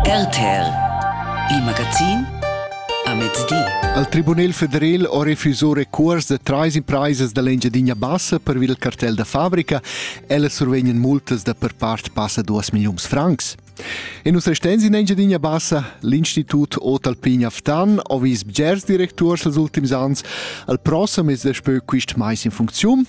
RTL Il magazin a mezdi. Al Tribunel federal ho refuso recuors da trais impraisas da l'Engiadina Bassa pervi dal cartel da fabrica. Ella survegnan multas da per part passa 2 milliuns francs. E nus restens in Engiadina Bassa, l'Institut Otalpin Aftan ho vis bgers directurs els ultims ans al prossem mes daspö quist mais in funcziun.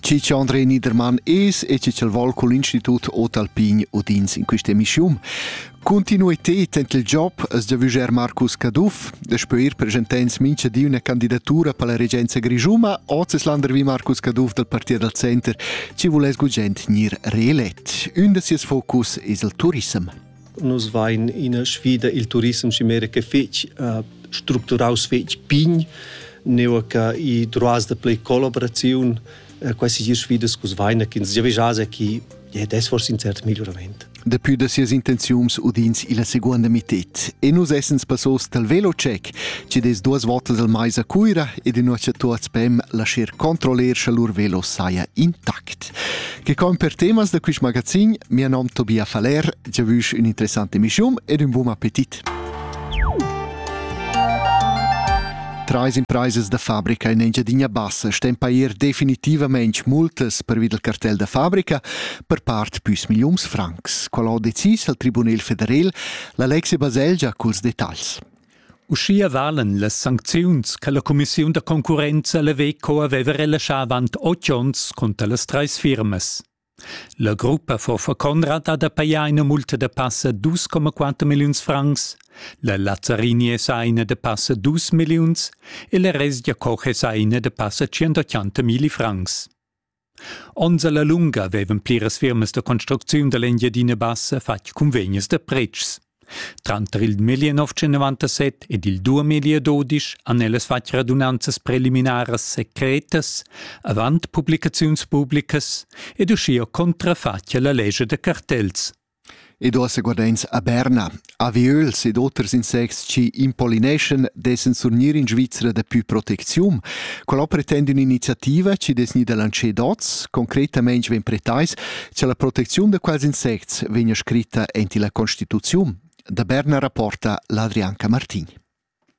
Chi cha André Niedermann es e chi ch'el vol cul Institut Ot Alpin udins in quist'emischiun. Continuited ent il job es giavüscher Marcus Caduff, daspö ir presentends mincha di üna candidatura per la regenza grischuma, hoz es landervi Marcus Caduff dal Partit dal Center, chi vuless gugent gnir reelet. Ün da sieus focus es il turissem. Nus vain ina sfida il turissem chimera che fich uh, structuraus fich pign, neu che i droas da play collaboraziun, uh, quasi gir sfidas cus vaina che ins già vejase chi ja, das forse in cert miglioramento. Depui da sias intenziums udins illa seguonda mited. E nus essens passos dal velocheck, ci des duas volte dal mais a Cuira ed in nuocha tuats pem lascer controller scha lur velo saia intact. Che con per temas da quist magazin, mia nom Tobia Faller, già vusch ün interessante mischum ed un buon appetit. Trais impraisas da fabrica in Engiadina Bassa stem pair definitivament multas pervi del cartel da fabrica per part püs milliuns francs. Qual ho decis al Tribunel federal la Lexi Baselgia culs detagls. Uschia valan las sancziuns che la cumissiun da concurrenza la Veco aveva relaschà avant otg onns cunter las trais firmas. La gruppa Forfa Conrad ha da pajar ina multa da passa 2,4 milliuns francs, la Lazzarini è sa ina da passa 2 milliuns e la Resgia Koch è sa ina da passa 180 milli francs. Onns alla lunga vevan pliras firmas da construcziun dall'Engiadina Bassa fatg cunvegnas da pretschs. Tranter il 1997 ed il 2012 han ellas fatg radunanzas preliminaras secretas, avant publicaziuns publicas ed uschia contrafatg alla lescha da cartels. ed uossa guardains a Berna, aviöls ed oters insects chi impolineschan d'essan surgnir in Svizra dapü protecziun. Quella ho pretend ün'iniziativa chi dess gnir da lancer dots. Concretamaing vegn pretais cha la protecziun da quels insects vegna scritta aint illa Constituziun. Da Berna rapporta l'Adrianca Martin.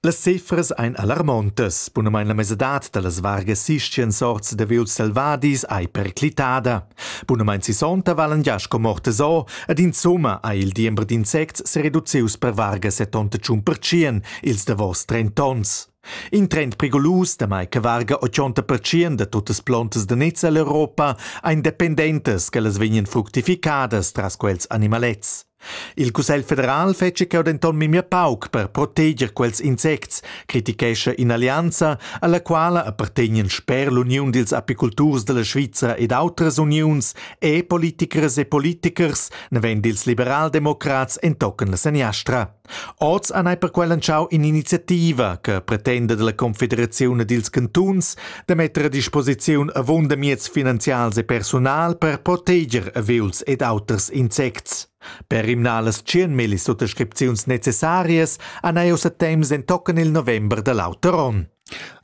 Las cifras ein alarmontas. Bunamain la mesadad dallas vargas sisien sorts da viols selvadis ei perclitada. Bunamain sisonta valan gia sco mortas o, ed insumma ei il diember d'insects sereducius per varga settonta tschun pertschien ils davos trent'onns. In trend prigulus, damai che varga ochonta pertschien da tuttas plontas da nez ell'Europa, ein dependentas che las vegnan fructificadas tras quels animalets. Il Cussegl federal fetscha cheu denton memia pauc per proteger quels insects, critichescha in'allianza, alla quala appartegnan sper l'uniun dils apiculturs dalla Svizra ed outras uniuns e politicheras e politichers, naven dils liberaldemocrats entochen la seniastra. Oz han ei perquei lantschau in'iniziativa che pretenda dalla Confederaziun e dils cantuns da metter a disposiziun avunda mieds finanzials e personal per proteger aviuls ed auters insects. Per rimnar las tschienmilli suttascripziuns necessarias han ei ussa temps entochen il november da l'auter onn.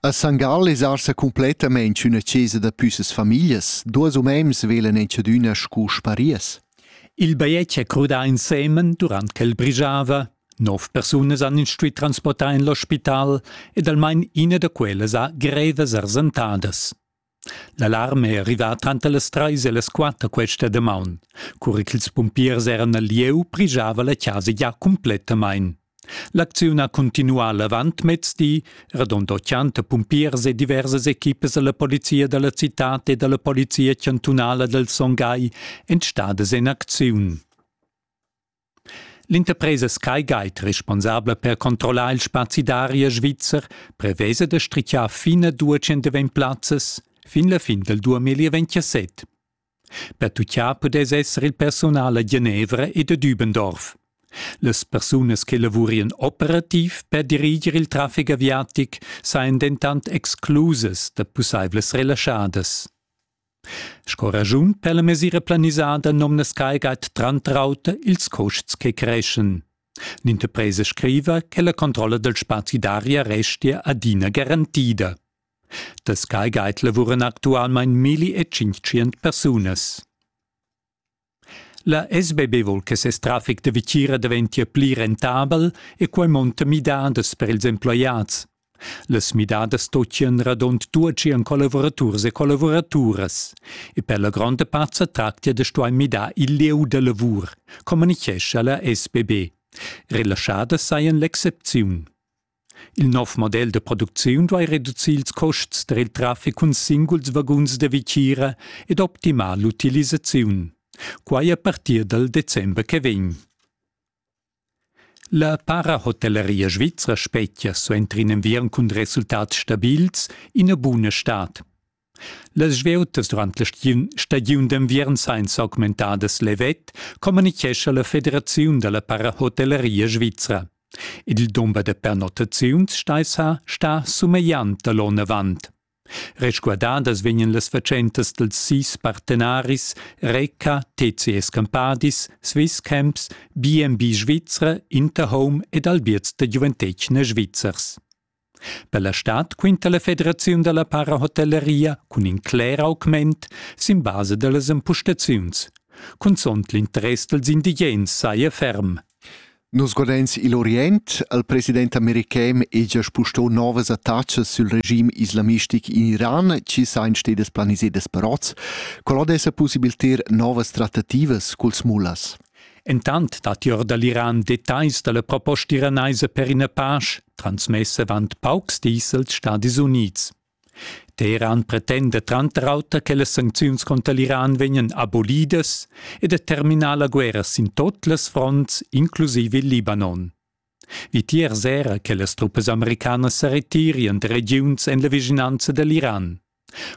A San Gall es arsa cumplettamaing üna chesa da püssas famiglias. Duos umains velen enchadüna scu sparias. Il bajetg è crudà ensemen durant ch'el brigiava. Nov persunas han instui transportà en l'ospital ed almain ina da quellas ha grevas ersentadas. L'alarm è arrivà tranter las trais e las quatter questa damaun. Cura ch'ils pumpiers eran al lieu, brigiava la chasa gia cumplettamain. L'acziun ha cuntinuà l'avantmezdi, radond 80 pumpiers e diversas equipas da la polizia da la citad e da la polizia chantunala dal Son Gai èn stadas en acziun. L'interpresa SkyGuide, responsabla per controllar il spazi d'aria svizzer, prevesa da strichar fin a 200 plazzas fin la fin dal 2027. Pertucchà pudess esser il persunal a Genevra ed a Dübendorf. Las persunas che lavurien operativ per diriger il traffic aviatic sain dentant exclusas da pussaivlas relaschadas. Sco ragiun per la mesira planisada nomna Skygate Trantrauter ils costs che creschen. L'interpresa scriva che la controlla del spazi d'aria restia adina garantida. Da Sky Guide lavuran actualmein milli e tschintschient persunas. La SBB vul che ses traffic da vitgira daventia pli rentabel e quei monta midadas per ils emploiads. Las midadas stottien radund duatschien collavuraturs e collavoraturas e per la gronda part sa tractia da stuai midar il lieu da lavur, communichescha la SBB. Relaschada sajan l'excepziun. Il nov model da producziun duai reducir ils custs per il traffic cun singuls vaguns da vitgira ed optimar l'utilisaziun. Quai a partir dal december che vegn. La Parahotelleria Svizra spetgia suenter in enviern cun resultats stabils ina buna stad. Las svieutas durant la stagiun d'enviern sain s'augmentadas levet, communichescha la Federaziun da la parahotelleria svizra. Il dumber da pernottaziuns staisa sta sumegliant da l'on avant. Resguardadas vegnan las fatschentas dels sis partenaris Reca, TCS Campadis, Swisscamps, BNB Svizra, Interhome ed Albiert da giuventetgna svizzers. Per la stad quinta la federaziun dalla parahotelleria cun in cler augment sin basa dallas empustaziuns. Cunzont l'interess dels indigens saja ferm. Nos godains igl Orient al president american è già spustò novas attacas sul regime islamistic in Iran, ci sain stedes planisedas per oz, qual od essa possibiliter novas trattativas culs mullas. Entant datti or da l'Iran detagls da la proposta iranaisa per ina pasch, transmess avant paucs dis als Stadis Unids. Teheran pretenda tranter auter che las sancziuns conter l'Iran vegnan abolidas e determinar la guerra sin tot las fronts, inclusive il Libanon. Vitier sera che las truppas americanas sa retirien da regiuns en la vischinanza da l'Iran.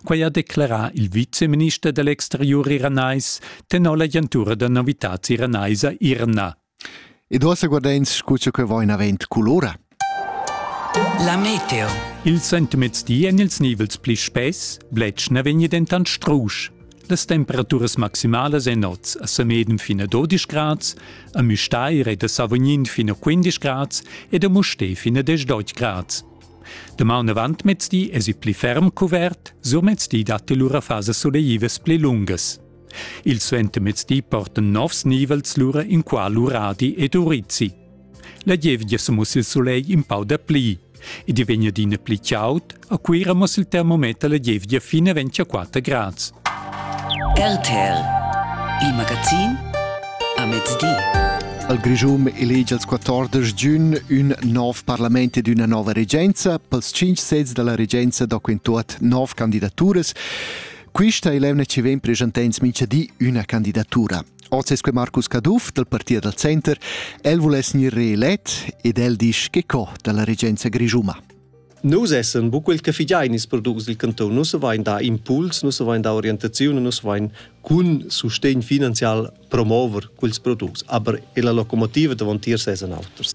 Quai ha declerà il viceminister da l'exteriur iranais tenor l'agentura da novitads iranaisa IRNA. Ed uossa guardains scu cha que vain avent culora. La meteo. Il sentimezdi en ils nivels pli spess, bletsch na vegni dentant strusch. Las temperaturas maximalas èn oz a Sameden fin a 12 grads, a Müstair e da Savognin fin a 15 grads ed a Musté fin a 18 grads. Damaun avantmezdi es il pli ferm cuvert, surmezdi dat lura fasas soleivas pli lungas. Il suentermezdi portan novs nivels lura in qua l'Uradi ed Urizzi. La gievgia sa muss il sulegl in pau da pli. Id vegn adina pli chaud, a Cuira mo il termometer la gievgia fin a 24 grads. RTL, il magazin a mezdi. Al Grischun elegi als 14 giugn ün nov parlament ed üna nova regenza. Pels 5 sezs da la regenza do in tuot nov candidaturas. Quista è l'emna ci vegn presentà in mincha di üna candidatura. Oz es que Marcus Caduff dal partit dal Center. El vuless gnir reelet ed el disch che co da la regenza grischuma. Nus essan bu quel che figiain ils products dil cantun, nus vain da impuls, nus vain da orientaziun, nus vain cun sustegn finanzial promover quels products, aber la locomotiva davantier sesan auters.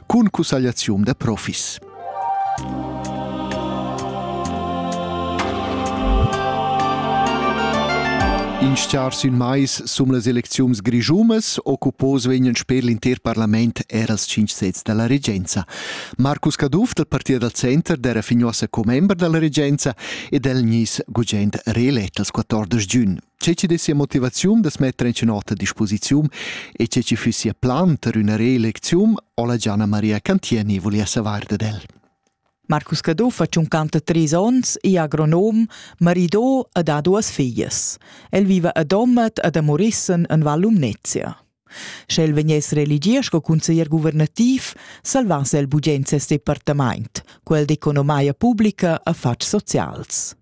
cun cussagliaziun da profis. In schar sün mais sum las elecziuns grischumas occupos vegnan sper l'inter parlament er als cinc sets dalla regenza. Marcus Caduff del Partit dal Center d'era fignuossa commember dalla regenza ed el gnis gugent reelett als 14 giugn. Tge che dess sia motivaziun da metter en nota a disposiziun e tge che fiss sia plan per una reelecziun o la Gianna Maria Cantieni volia savar dad el. Marcus Cadò fa 53 onns, è agronom, maridò e ha duas figlias. El viva a Domat ed a Morissen en Val Lumnezia. Sch'el vegness reelegì sco cunseglier guvernativ, salvass el bugen ses departament. Quel d'economia publica affars socials.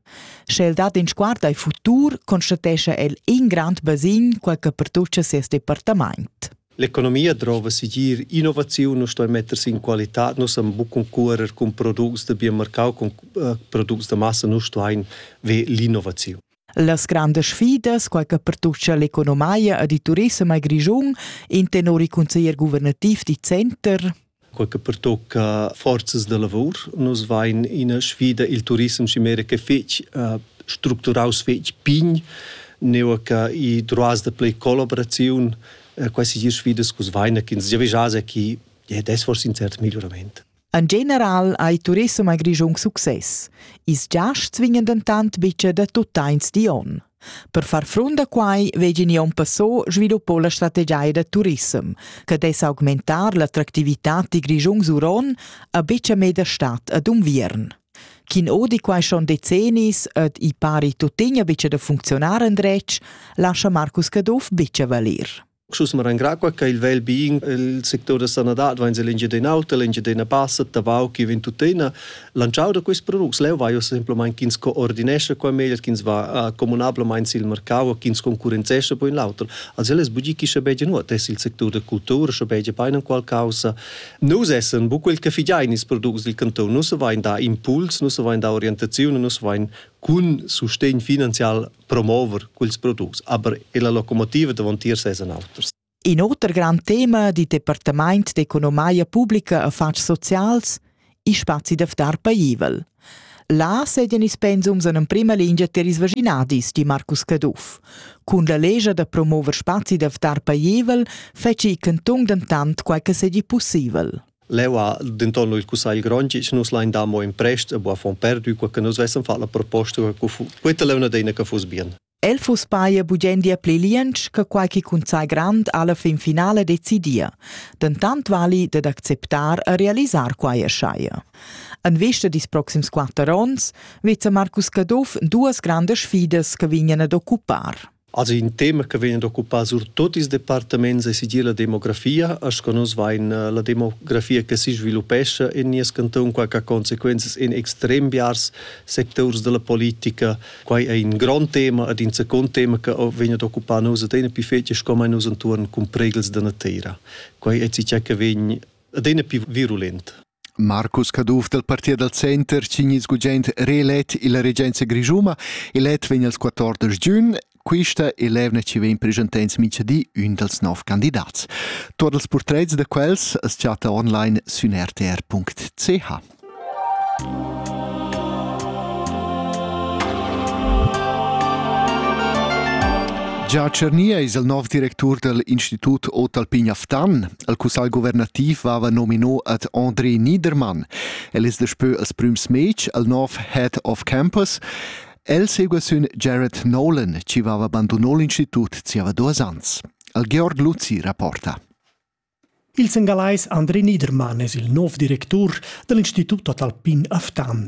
Sch'el dat in sguard al futur, constatescha el in grand basin, quel che pertuccia ses departament. L'economia drova sigir innovaziun nu stoi mettersi in qualità. Nus am buc concurer cun products de biomarcau, cun uh, products de massa, nu stoin ve l'innovaziun. Las grandas sfidas, quai che pertutgia l'economia ed il turissem al Grischun, intenor il consiglier guvernativ di Center. Quai che pertocca forzas da lavor. Nus vain ina sfida il turissem chimera che fetg uh, structuraus fetg pign, neu che i droas da play collaboraziun, uh, quasi sfidas cus vaina che ins già vegia chi, ja, das forse un cert miglioramento. En general ha il turissem a Grischun success. Ils giasts vegnan dentant betg da tuttains di onn. Per far frunt a quai vegin onn passò sviluppò la strategia da turissem, che dess augmentar l'attractivitad di Grischun Suron a betga meda stat ad Unviern. Chin odi quai schon decennis ed i pari tuttina betga da funcziunar endretg, lascha Marcus Caduff betga valir. Schus me rangrar qua che il vel bien il sector da sanadad va in l'Engiadin'Auta, l'Engiadina Bassa, Tavau che vin tuttina lanciau da questi products leu va io semplamain ch'ins coordinesce qua meglio ch'ins va comunablamain sil mercau ch'ins concurrenzesce poi in l'auter also es bugi chi sche beige nuot es il sector da cultura sche beige peinen qual causa nus essen bu quel che figiain ils products del canton nus vain da impuls nus vain da orientazione nus vain cun sustegn finanzial promover quels products, aber la locomotiva davon tier ses auters. In oter grand tema di Departament d'economia pubblica affars socials i spazi da ftar paivel. Là sedian ils pensums en emprima lingia ter ils vaginadis, di Marcus Caduff. Cun la legia da promover spazi da ftar paivel feci il canton dentant quai che sedi possibel. Leu ha denton il cussagl grond che nus lein dar mo in prest a Buffon perdu, qua che nus vessen fatg la proposta quetta leuna deina che fuss bien. El fuss paia bugendia pli liensch che quai che cunsai grand alla fin finale decidia. Dentant vali dad acceptar a realisar quai erschaia. En vista dis proxims quatter onns veza Marcus Caduff duas grandes sfidas che vignan ad occupar. Also in tema che vegn occupà surtut ils departaments è sigir la demografia, sco nus vain eh, la demografia che si sviluppescha in nies canton, qua che conseguenze in extrem biars sectors della politica. Quai è in grande tema ed in secondo tema che vegn occupà nus ed è più fetisch come nus intorno con pregels della terra. Quai è ciò che vegn adina più virulent. Marcus Caduff dal partit dal center cignis gugent reelett illa regenza grischuna. Elet vegn als 14 giun. Quista è l'evna chi vegn preschentants mincha di ün dals nov candidats. Tuot els purtrets da quels as chatta online sün rtr.ch. Gia Czernia es il nov directur dal Institut Otalpin Aftan. El cussagl guvernativ vava nomino ad André Niedermann. El es daspö als prüms meci al nov head of campus. El segua sün Jared Nolan, chi vava abandonò l'institut zieva duos ans. Al Georg Luzzi rapporta. Il sengalais André Niedermann es il nov directur da l'Institut Totalpin a Ftan.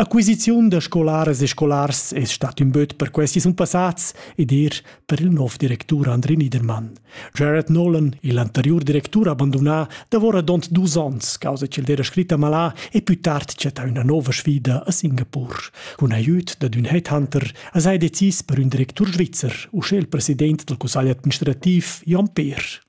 Acquisiziun da scolaras e scolars es stat ün böt per questi sun passats ed eir per il nov directur Andri Niedermann. Jared Nolan, il anteriur directur, ha abandonà davoradont dus ons causa ch'el d'eira scritta malà e pü tard chattà üna nouva sfida a Singapur. Cun aiüt dad ün headhunter as ha decis per ün directur svizzer, uschè il president dal cussagl administrativ Jon Peer.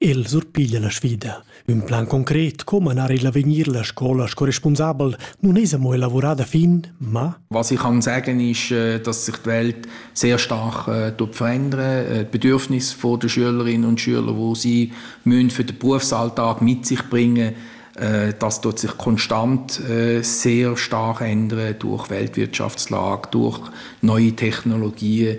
El surpiglia la sfida. Ün plan concret co manar il avegnir la scola sco responsabel nun es amo elavurà da fin, ma Was ich kann sagen ist, äh, dass sich die Welt sehr stark äh, verändern äh, Die Bedürfnisse der Schülerinnen und Schüler, wo sie für den Berufsalltag mit sich bringen das tut sich konstant sehr stark ändern durch Weltwirtschaftslage, durch neue Technologien.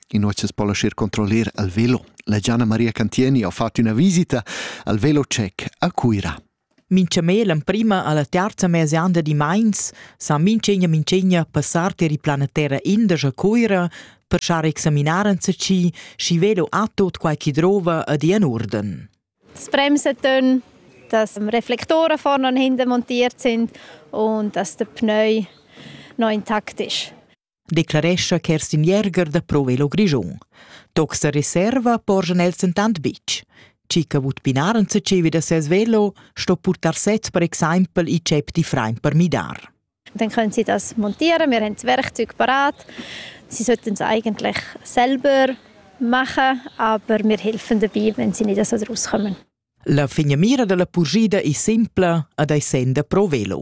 In nochas po lascher controller al velo. La Gianna Maria Cantieni ha fatto una visita al velo check a Cuira. Minchamé l'emprima alla terza mese anda di Mainz sa minchegna minchegna passar ter plana terra indas a Cuira per schar examinar anzaci schi velo a tot quai chi drova a di an urden. Das Bremsetöne, dass Reflektoren vorne und hinten montiert sind und dass der Pneu noch intakt ist. declarescha Kerstin Jäger da Provello Grischun. Toc sa reserva porschan els entant bitg. Chi che vut pinar en tschevi da ses velo sto purtar set per exempel i cep di frain per midar. Dann können sie das montieren, wir haben das Werkzeug parat. Sie sollten es eigentlich selber machen, aber wir helfen dabei, wenn sie nicht so rauskommen. La figna mira della purgida è simpla ed è senda pro velo.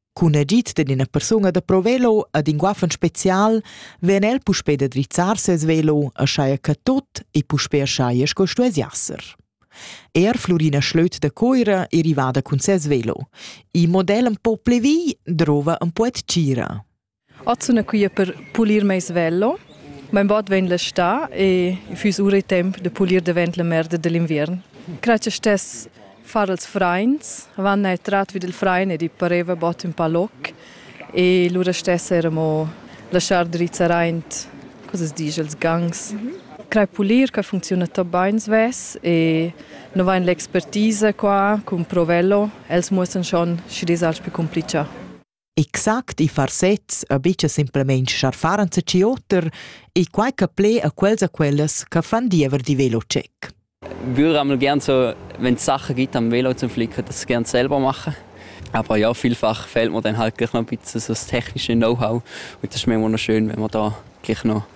Cun agid dad ina persuna da pro velo ad in guaffen special vegn el puspè da drizzar ses velo, aschaia che tot e puspè aschaia sco stuess jasser. Er Florina Schlöt da Coira è rivada cun ses velo. Il model un po plevì drova un po tgira. Ot sun quia per pulir meis vello. Mein bod vegn l'està e i füss ura e temp da pulir davent la merda da l'inviern. Grazcha stess far els frains. Avant n'ha trat vi dal frain ed i pareva bod ün pa loc e lura stess eir amo laschar drizzar aint cosas disch els gangs. Crai pulir qua funcziuna tot bain svess e no vain l'expertisa qua cun Provello. Els muossan schon schi disals pü cumplichà. Exact i far sezs a bicha simpelmaing scharfar enzatgi oter e quai che ple a quels a quellas che fan diever di velocheck. Gür amel gern so, wenn Sachen gibt am Velo zum Flicken, das gern selber machen. Aber ja, vielfach fehlt mir dann halt gleich noch ein bisschen so das technische Know-how. Und das ist mir immer noch schön, wenn man da gleich noch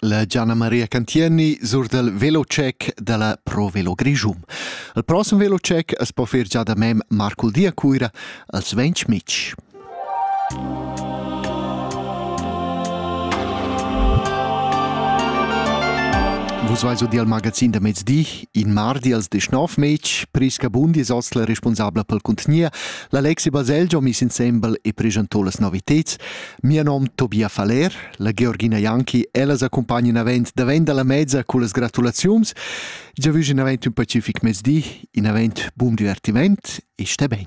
La Gianna Maria Cantieni sur del velocec della Pro Velo Grischum. Il prossim velocec es po fer già da mem Marcul Dia Cuira als 20 Mitsch. Vus vais dir al magazin da mezdi, in mardi als 19 Mitsch, Priska Bundi es oz la responsabla pel contenier, l'Alexi Baselgio mis insembel e presentò las noviteds, Mia nom Tobia Faller, la Georgina Janki, ellas accompagnan avent davent dalla mezza con las gratulaziuns. Già vügen avent un pacific mezdi, in avent bun divertiment e sté ben.